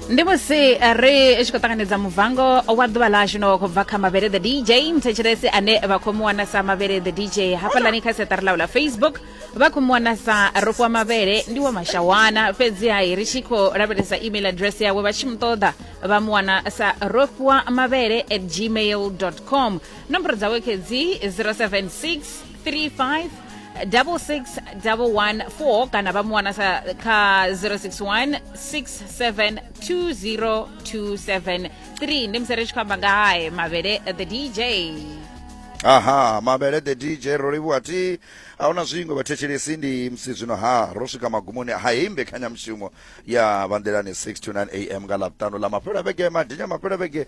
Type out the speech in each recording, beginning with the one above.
ndi musi eh, ri tshi khou ṱanganedza muvango wa ḓuvha ḽashu no khou bva kha mavhele the dj mthetshelesi ane vha khou mu wana sa mavhele the dj hafhaḽani kha seṱari ḽau ḽa facebook vha khou mu wana sa rofiwa mavhele ndi wa mashawana fhedzi hai ri tshi khou lavhelesa email address yawe vha tshi mu ṱoḓa vha mu wana sa rofiwa mavhele at gmail com nomboro dzawe khedzi 076 35 6614 kana vha mu wana sa kha 061 672027 3 ndi musi ri tshi khou amba nga hae mavhele the dj aha mavhele the dj ro livhuwa ti ahuna zwiṅwe vhathetshelesi ndi musi zwino ha ro swika magumoni ha heyi mbekanyamushumo ya vanḓelani 6 to 9 am nga ḽavhuṱanu ḽa mafhelo a vhege madinya mafhelo a vhege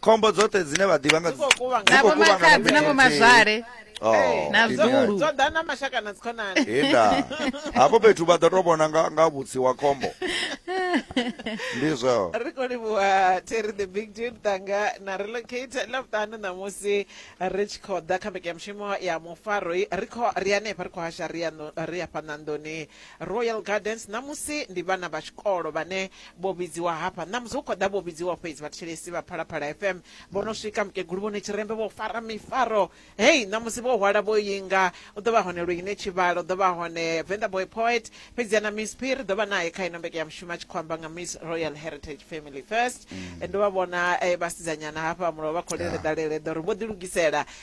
khombo dzoṱhe dzine vha ḓivha nga Dzi khou kuvhangana. dzi khou Navho kuvhangana makhadzi, fhethu navho nthihi. mazwale, Oh, na ndi vhulu. ngani? dzo ḓa na mashaka na dzikhonani henda hafho fhethu vha ḓo to vhona nga nga vhutsi wa khombo ndi zweo ri khou livhuwa terry the big dude tanga na relocate lavhuṱanu ṋamusi ri tshi khou ḓa kha mbekanyamushumo ya mufaroi ri khou ri hanefha ri khou hasha ri ya ndo- ri ya fhana nḓuni Royal Gardens ṋamusi ndi vhana vha tshikolo vhane vho vhidziwa hafha. Ṋamusi hu khou ḓa vho vhidziwa fhedzi vhathetshelesi vha Phalaphala FM vho no swika. Mukegulu Vho Netshirembe vho fara mifaro heyi ṋamusi vho hwala vho inga. U ḓo vha hone Luyine Tshivhalo, u ḓo vha hone Venḓa Boy Poet, fhedziha na Miss P ri ḓo vha nae kha ino mbeke ya mushumo a tshi khou amba nga Miss Royal Heritage Family First. Ndo vha vhona vhasidzanyana hafha mulovha kholele ḓalele ḓo ri vho ḓilugisela.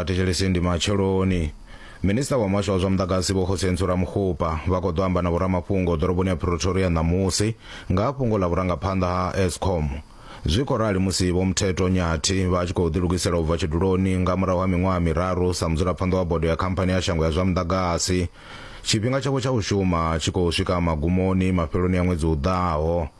a thetshelesi ndi matsheloni minista wa muhasho wa zwa muḓagasi vho khosentsho ramukgopa vha khou ḓo amba na vhoramafhungo ḓoroboni ya pretoria ṋamusi nga ha fhungo ḽa vhurangaphanḓa ha escom zwi khou rali musi vho muthetho nyathi vha tshi khou ḓilugisela u bva tshiduloni nga murahu ha miṅwaha miraru sa mudzulaphanḓa wa bodo ya khamphani ya shango ya zwa muḓagasi tshifhinga tshavho tsha u shuma tshi khou swika magumoni mafheloni a ṅwedzi u ḓaho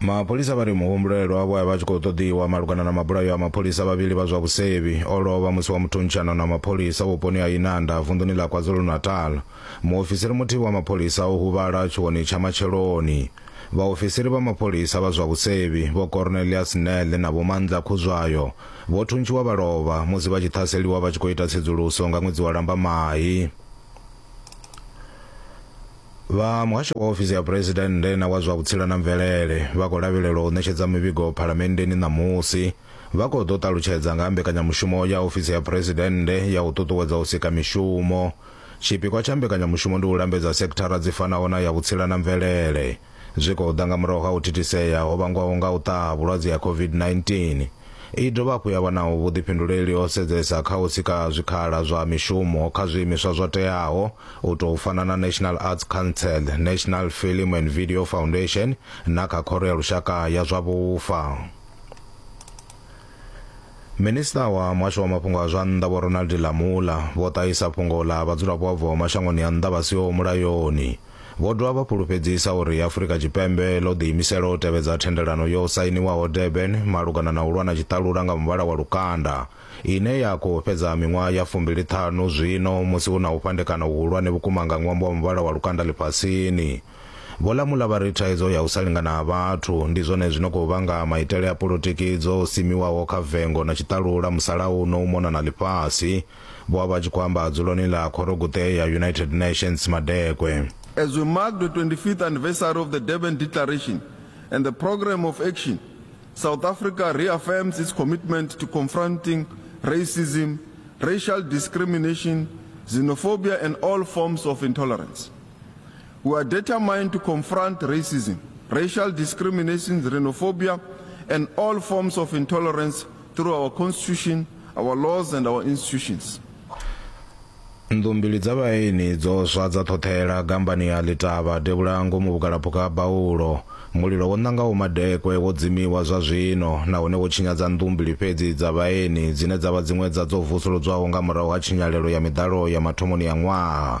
mapholisa vha ri muhumbulelwa wavho a vha tshi khou ṱoḓiwa malugana na mabulayo a mapholisa vhavhili vha zwa vhusevhi o lovha musi wa muthuntshanano na mapholisa vhuponi ha inanda vunḓuni ḽa kwazulu-natal muofisiri muthihi wa mapholisa o huvhala tshiwoni tsha matsheloni vhaofisiri vha mapholisa vha zwa vhusevhi vho cornelius nele na vhomandla khuzwayo vho thuntshiwa vha lovha musi vha tshi ṱhaseliwa vha tshi khou ita tsedzuluso nga ṅwedzi wa lambamai vha muhasho wa ofisi ya phuresidennde na wa zwa vhutsila na mvelele vha khou lavhelelwa u ṋetshedza mivhigo phalamenndeni ṋamusi vha khou ḓo ṱalutshedza nga ha mbekanyamushumo ya ofisi ya phuresidennde ya u ṱuṱuwedza u sika mishumo tshipikwa tsha mbekanyamushumo ndi u lambedza sekithara dzi fanaho na ya vhutsila na mvelele Zwi khou ḓa nga murahu ha u thithisea ho vhangwaho nga u ṱaha ha vhulwadze ha COVID-19. I dovha hafhu ya vha na vhuḓifhinduleli ho sedzesa kha u sika zwikhala zwa mishumo kha zwiimiswa zwo teaho u tou fana na National Arts Council, National Film and Video Foundation na kha Khoro ya Lushaka ya zwa Vhufa. Minisiṱa wa muhasho wa mafhungo a zwa nnḓa vho Ronald Lamola vho ṱahisa fhungo ḽa vhadzulapo vha bvaho mashangoni a nnḓa vha siho mulayoni. Vho dovha vha fhulufhedzisa uri Afrika Tshipembe ḽo ḓiimisela u tevhedza thendelano yo sainiwaho Durban malugana na u lwa na tshiṱalula nga muvhala wa lukanda, ine ya khou fhedza miṅwaha ya fumbili ṱhanu zwino musi hu na u fhandekana huhulwane vhukuma nga ṅwambo wa muvhala wa lukanda ḽifhasini. Vho Lamula vha ri thaidzo ya u sa lingana ha vhathu ndi zwone zwi no khou vhanga maitele a polotiki dzo simiwaho kha vengo na tshiṱalula musalauno u mona na ḽifhasi. Vho a vha tshi khou amba dzuloni ḽa khoroguṱe ya United Nations Madekwe. As we mark the 25th anniversary of the Durban Declaration and the Programme of Action, South Africa reaffirms its commitment to confronting racism, racial discrimination, xenophobia and all forms of intolerance. We are determined to confront racism, racial discrimination, xenophobia, and all forms of intolerance through our constitution, our laws, and our institutions. nnḓu mbili dza vhaeni dzo swa dza ṱhoṱhela gambani ya ḽitavha devhula ngomu vhugalaphukha ha baulo mulilo wo ṋangaho madekwe wo dzimiwa zwa zwino nahone wo tshinyadza nnḓu mbili fhedzi dza vhaeni dzine dza vha dziṅwe dza dzo vusuludzwaho nga murahu ha tshinyalelo ya miḓalo ya mathomoni ya ṅwaha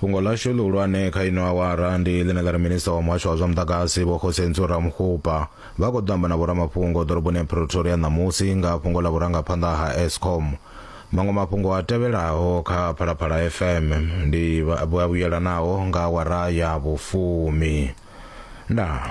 fhungo ḽashu ḽihulwane kha ino awara ndi ḽine ḽa ri minista wa muhasho wa zwa muḓagasi vho khosentso ramukhupa vha khou ḓo amba na vhoramafhungo ḓoroboni ya pretoria ṋamusi nga fhungo ḽa vhurangaphanḓa ha escom maṅwe mafhungo a tevhelaho kha phalaphala fm ndi vhuyelanaho nga awara ya vhufumi ndaa